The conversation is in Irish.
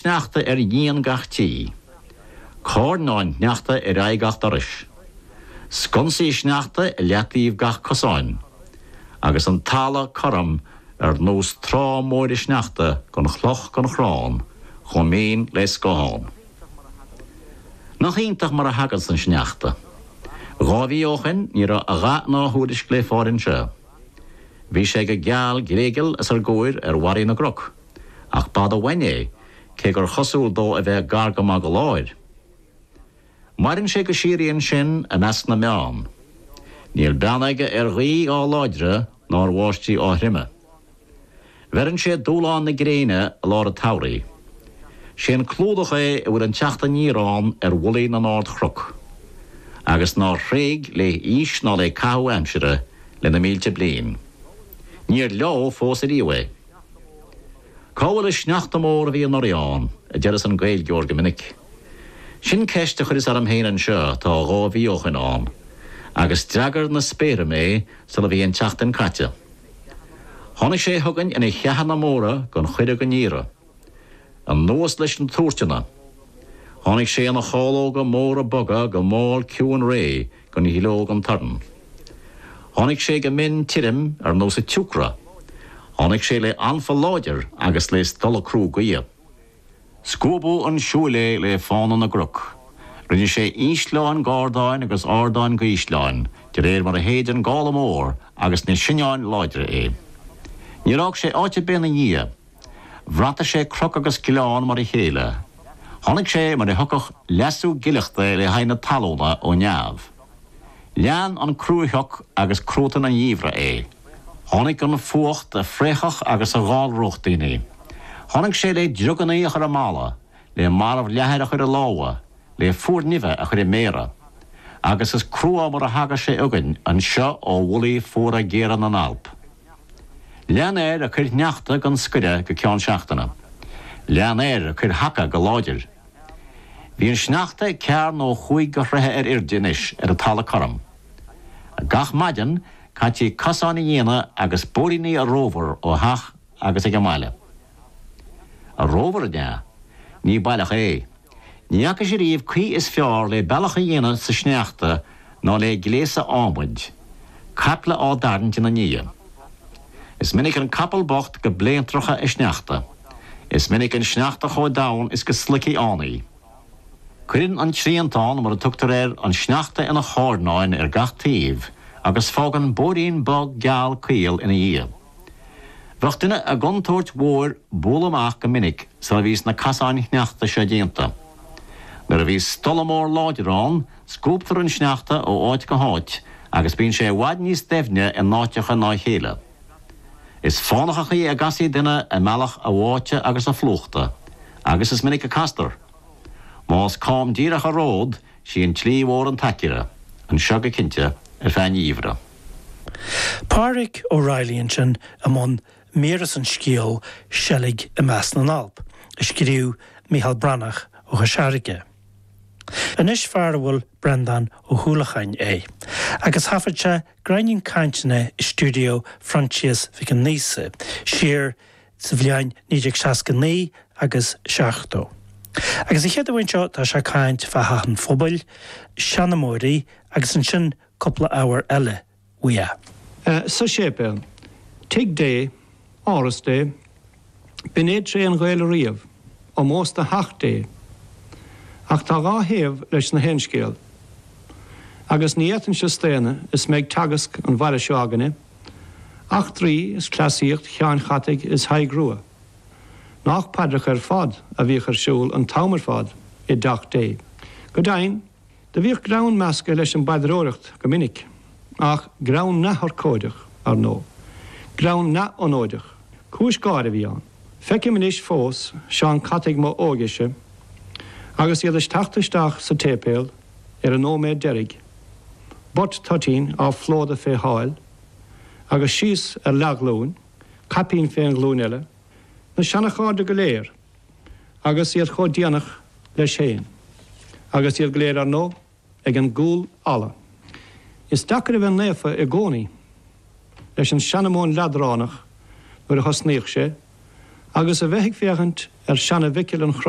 sneachta ar dhíon gach tí, carnáin shneachta ar aghaidh gach dorais, sconsaí sneachta i leataoibh gach cosáin, agus an talamh cothrom ar nós trá móire sneachta gan chloch gan chrann, chomh mín le scáthán. Nach iontach mar a thaganns an sneachta! Dhá mhí ó shin ní raibh a dhath ná a thuairisc le fáil anseo. Bhí sé go geal gléigeal os ár gcomhair ar bharraí na gcnoc. ach b'fhada uainn é, cé gur chosúil dó a bheith gar go maith do láthair. Maireann sé go síoraí ansin i measc na mbeann. Níl beann aige ar ghaoth á láidre ná ar bháistí á throime. Bheireann sé dúshlán na gréine i lár an tsamhraidh. Sé an clúdach é a bhfuil an teacht aniar ann ar mhullaí na n-ardchroc, agus nár thréig lé haois ná lé caitheamh aimsire le na mílte bliain. Níor leádh fós ariamh é. Cá bhfuil an sneachta mór a bhí anuraidh ann? a deireas an Gaeilgeoir go minic. Sin ceist a chuireas orm féin anseo tá dhá mhí ó shoin ann, agus d'fhreagair na spéartha mé sula bhí an tseachtain caite. Tháinig sé chugainn ina cheathanna móra gan chuireadh gan iarraidh. Anuas leis ina thuairteanna. Tháinig sé ina chalóga móra boga go mall ciúin réidh. gan gleo gan torann. Tháinig sé go mion tirim ar nós an tsiúcra. Tháinig sé lé anfa láidir agus lé stolladh crua gaoithe. Scuabadh chun siúil é lé fána na gcroc. Rinne sé ísleáin de ardáin agus ardáin de ísleáin de réir mar a shéid an gála mór agus na soinneáin láidre é. Níor fhág sé áit ar bith ina dhiaidh. Bhrataigh sé croc agus gleann mar a chéile. Tháinig sé mar a thiocfadh leasú gileachta le haghaidh na talúna ó neamh. Lean an cruashioc agus cruatan an gheimhridh é. Tháinig an fuacht a phréachfadh agus a dhallródh daoine. Tháinig sé le driogannaí a chur i mballa, le marbhleathar a chur i lámha, le fuarnimh a chur i méara. Agus is crua mar a thagas sé againn anseo ó mhullaí fuara géara na nAlp. Lean air ag cur shneachta gan scoireadh go ceann seachtaine. Lean air ag cur sheaca go láidir. Bhí an sneachta ag ceathair nó cúig de throithe ar airde anois ar an talamh cothrom. Gach maidin, caithtí cosáin a dhéanamh agus bóithríní a rómhar ó theach agus ag an mbaile. A rómhar an ea? Ní baileach é. Ní fhacas ariamh caoi is fearr lé bealach a dhéanamh sa sneachta ná lé gléasa adhmaid, caiple á dtarraingt ina ndiaidh. Is minic an capall bocht go bléantracha i sneachta. Is minic an sneachta chomh domhain is go sloigfí ann í. Cuireann an triantán, mar a tugtar air, an sneachta ina charnáin ar gach taobh agus fágann bóithrín bog geal caol ina dhiaidh. Bheadh duine i gcontúirt mhór bualadh amach go minic sula mbíos na casáin sneachta seo déanta. Nuair a bhíos stolladh mór láidir ann scuabtar an sneachta ó áit go háit agus bíonn sé i bhfad níos doimhne i n-áiteacha ná a chéile. Is fánach an chaoi a gcasfaí duine i mbealach a bháite agus a phlúchta, agus is minic a castar. Más cam díreach an ród, Sí an tslí mhór an t-aicearra. Anseo go cinnte, ar feadh an gheimhreadh. Pádraic Ó Reilly ansin i mbun míre as an scéal 'Seilg i Measc na nAlp' a scríobh Micheál Breathnach ó Chois Fharraige. Anois fear darbh ainm Breandán Ó hUallacháin é agus thaifead sé gráinnín cainteanna i stiúideo Phroinsias Mhic Aonghusa siar sa bhliain 1969 agus 70. Agus an chéad cheann seo tá sé ag caint fá theach an phobail, seanmóirí agus ansin cúpla ábhar eile uaidh. Ah, sa séipéal, tigh Dé, áras Dé, b'in é tréith an Ghaeil ariamh, omós do theach Dé. Ach tá dhá thaobh leis an aon scéal. Agus ní fhéadfainnse staonadh is mé ag teacht thar an bhaile seo againne, eachtraí is cleasaíocht seanchataigh is Thaidhg Rua. Nach paidreacha ar fad a bhíodh ar siúl an t-am ar fad i dTeach Dé. Go deimhin, do bhíodh greann measctha leis an bpaidreoireacht go minic, ach greann neamhurchóideach, ar ndóigh. Greann neamh-anóideach. Cúis gáire a bhí ann. Feicim anois fós seanchataigh mo óigese agus iad ag teacht isteach sa tséipéal, ar an nóiméad deiridh, buit toitín á phlódadh féna sháil, agus síos ar leathghlúin, caipín fén ghlúin eile, na seanachairde go léir, agus iad chomh déanach leis féin, agus iad go léir, ar ndóigh, ag an gcúl alla. Is deacair a bheith naofa i gcónaí leis an seanamóin leadránach nuair a thosnaíodh sé, agus a bheith ag féachaint ar Sheana-Mhicil an Chro